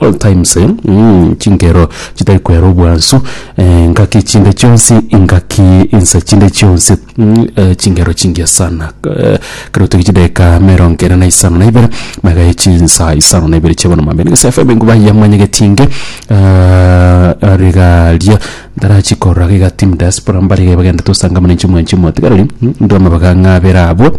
Old times eeh chinkero chitari kwera obwansu eeh ngaki chinde chionsi ingaki inse chinde chionsi eeh chinkero chingiya sana eeh ekero toige chidakika emerongo ene na isano na ibere magaye chinsa isano na ibere chia bono mambia nigese fm enguma ya mwanyagetie inge rigaria ntarachi korora iga team diaspora mbare iga bagenderete gosangamana inche mwanche motigareri ndire amabaga ng'abere abwo.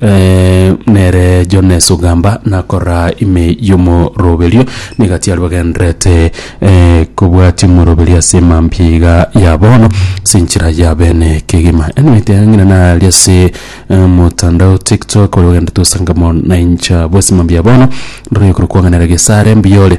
nere Jones ogamba nakorora ime y'omoroberio, negati aria bagendererete kobwatia omoroberio ase emambia iga ya bono ase enchera ya bene kegima. Enweete aya ng'ina nare ase omotandao TikTok oyo ogenderete gosanga mono na inche abwo ase emambia ya bono ndoria okorokwa ng'a nere gesare mbuyore.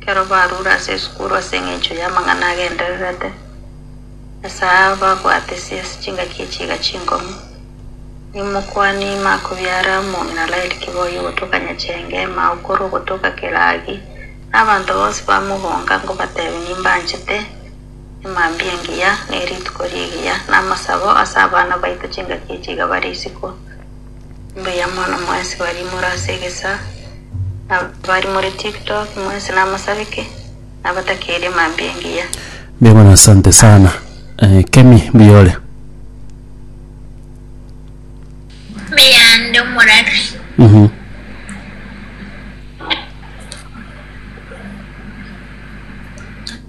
ekero barure ase esukuru ase engencho y'amang'ana agendererete, ase aa babwatesie ase chingaki echiiga chinkong'u. Nimokwanie ime akobiare amo na Laeli kiboyio gotoka nyachenge mao korwa ogotoka Keragi, na abanto bonsi bamogonga ngobatebia nimbanchete emambia engiya, ne rituko rigiya, na amasabo ase abana baito chingaki echiiga bare isiko. Mbuya mono mwensi baria more ase egesaa, na baria more tiktok mwensi namasabeke, nabatakeire mambia engiya. Mbuya mono asante sana eh, kemi mbuya ore Mbuya ndi omorari. Mhm.